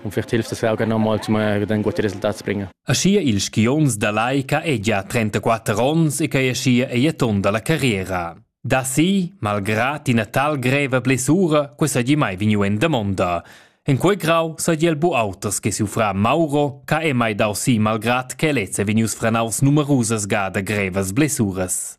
convertire queste auge normal zu meiner dann gute Resultate bringen. Aschia il skions da laica è già 34 ons e che aschia è ton dalla carriera. Da si, malgrad ina tal greva blessura, questa gi mai vegnu en damonda. En quei grau sa il bu auters che si fra Mauro, che è mai dau si malgrad che lezze vegnius franaus numerusas gada grevas blessuras.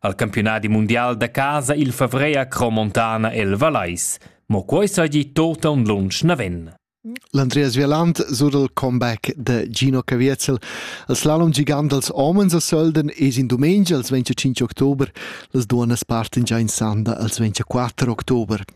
Al campionadi mundial da casa il favrer a Cromontana el Valais. Mo quei seigi totan lunsch naven. L'Andreas Vieland sur il comeback da Gino Caviezel. Il slalom gigant dels homens a Sölden es in domenica als 25 october, las duonas parten già in sanda als 24 october.